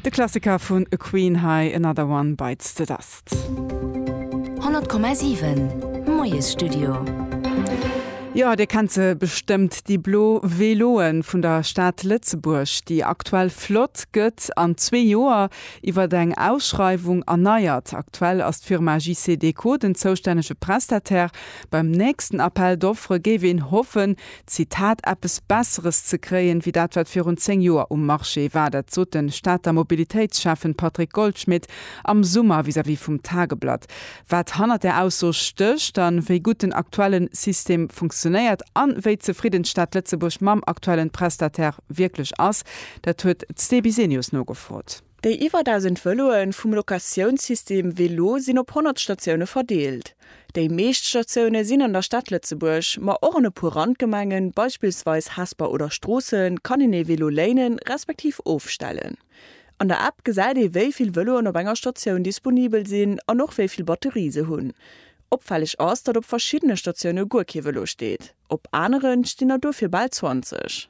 De Klassiker vun Queen hei, Another One Bites the Dust. 100,7 Moiesstudio. Jo, dir kennt se bestëmmt, déi blo Veloen vun der Stad Lëtzebuerg, déi aktuell Flott gëtt an zwee Joer iwwert eng Ausschreiwung erneiert. Aktuell ass d'Firma JCDecaux den zoustännege Prestataire. Beim nächsten Appel d'offres géif een hoffen, Zitat, Eppes Besseres ze kréien, wéi dat, wat virun 10 Joer um Marché war. Dat sot de Stater Mobilitéitsschäffen Patrick Goldschmidt am Summer vis-à-vis vum Tageblatt. Wat hannert där Ausso stécht an wéi gutt den aktuelle System funktionéiert an wéi zefridden d'Stad Lëtzebuerg mam aktuellen Prestataire wierklech ass, dat huet d'Stebi Senius nogefrot. Déi iwwer 1.000 Vëloe vum Locatiounssystem Vélo sinn op 100 Statioune verdeelt. Déi meescht Statioune sinn an der Stad Lëtzebuerg, ma och an e puer Randgemengen, beispillsweis Hesper oder Stroossen, kann een ee Vélo léinen, respektiv ofstellen. An der App gesäit ee wéi vill Vëloen op enger Statioun disponibel sinn an och wéi vill Batterie se hunn. Opfälleg ass, datt op verschiddene Statioune guer kee Vëlo steet, op aneren stinn der dofir bal 20.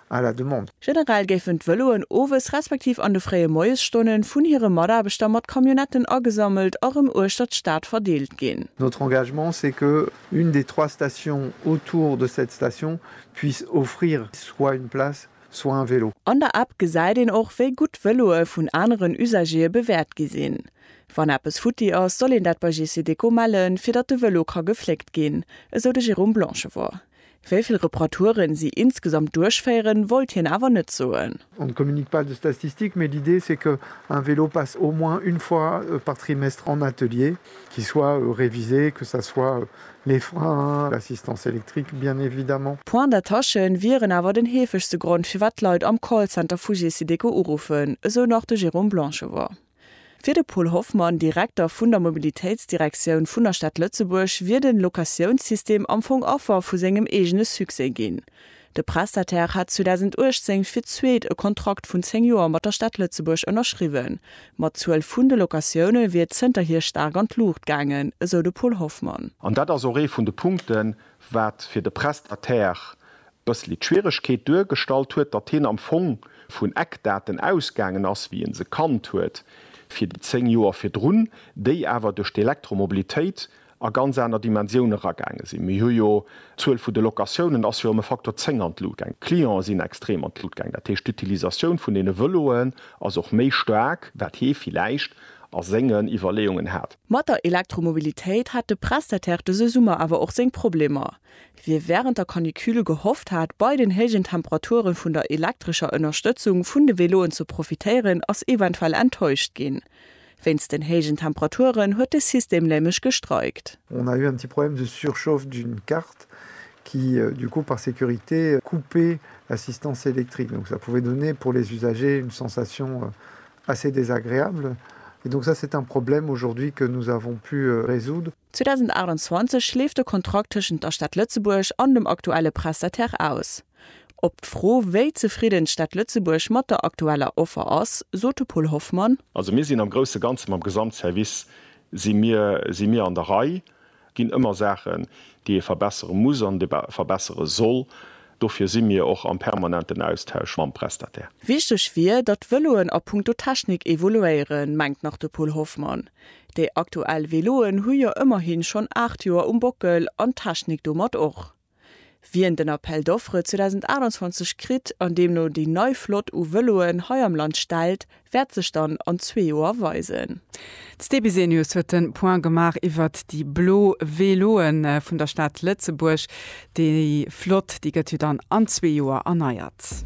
à la demande. Generell géifen d'Vëloen owes respektiv an de fréie Moiesstonnen vun hire Mataarbechter mat Camionnetten agesammelt a rëm uechter d'Stad verdeelt ginn. Notre engagement, c'est que une des trois stations autour de cette station puisse offrir soit une place, soit un vélo. An der App gesäit een och, wéi gutt d'Vëloe vun aneren Usagéeë bewäert gi sinn. Wann eppes futti ass, soll een dat bei GC Déco mellen, fir datt de Vëlo ka gefléckt ginn, esou de Jérôme Blanchevort. Wéi vill Reparaturen si insgesamt duerchféieren, wollt hien awer net soen. On ne communique pas de statistiques, mais l'idée c'est que un vélo passe au moins une fois par trimestre en atelier, qu'il soit révisé, que ça soit les freins, l'assistance électrique bien évidemment. Points d'attache wieren awer den heefegste Grond firwat d'Leit am Callcenter vu Gesideco uruffen, esou nach de Jérôme Blanchevert. Fir de Paul Hoffmann, Direkter vun der Mobilitéitsdirektioun vun der Stad Lëtzebuerg, wier de Locatiounssystem am Fong Affer vu sengem eegene Succès ginn. De Prestataire hat 2018 fir d'zweet e Kontrakt vun 10 Joer mat der Stad Lëtzebuerg ënnerschriwwen, ma d'Zuel vun de Locatioune wier zënterhier staark an d'Luucht gaangen, esou de Paul Hoffmann. An dat ass och ee vun de Punkten, wat fir de Prestataire bëssli d'Schwieregkeet duergestallt huet, datt hien am Fong vun Eckdaten ausgaangen ass, wéi en se kannt huet fir déi 10 Joer virdrun, déi awer duerch d'Elektromobilitéit a ganz aner Dimensioun eragaange sinn. Mir hu jo, d'Zuel vu de Locatiounen ass jo ëm e Faktor 10 an d'Lut gaang, d'Clientë sinn extrem an d'Lut gaang, dat heescht d'Utilisatioun vun deene Vëloen ass och méi staark, wat hie villäicht a sengen Iwwerleeungen hat. Mat der Elektromobilitéit hat de Prestataire dëse Summer awer och seng Problemer. Wie während der Canicule gehofft hat, bei den héijen Temperaturen vun der elektrescher Ënnerstëtzung vun de Veloen ze profitéieren, ass eventuell enttäuscht ginn. Wéinst den héijen Temperaturen huet de System nämlech gestreikt. On a eu un petit problème de surchauffe d'une carte qui du coup par sécurité coupait l'assistance électrique donc ça pouvait donner pour les usagers une sensation assez désagréable et donc ça c'est un problème aujourd'hui que nous avons pu résoudre. 2028 leeft de Kontrakt tëschent der Stad Lëtzebuerg an dem aktuelle Prestataire aus. Op d'Fro, wéi zefridden d'Stad Lëtzebuerg mat der aktueller Offer ass, sot de Paul Hoffmann. Also mir sinn am grousse Ganze mam Gesamtservice si mir si mir an der Rei. Et ginn ëmmer Saachen, déi ee verbessere muss an verbessere soll. Dofir si mir och am permanenten Austausch mam Prestataire. Wichteg wier, datt d'Vëloen a punkto Technik evoluéieren, mengt nach de Paul Hoffmann. Déi aktuell Veloen hu jo ëmmerhi schonn 8 Joer um Bockel an d'Technik domat och. Wien den Appel d'offres 2028 kritt an deemno déi nei Flott u Veloen hei am Land stellt, wäert sech dann an zwee Joer weisen. D'Sté Bisenius huet de Point gemaach iwwert déi blo Veloe vun der Stad Lëtzebuerg. Déi Flott, déi gëtt jo dann an zwee Joer erneiert.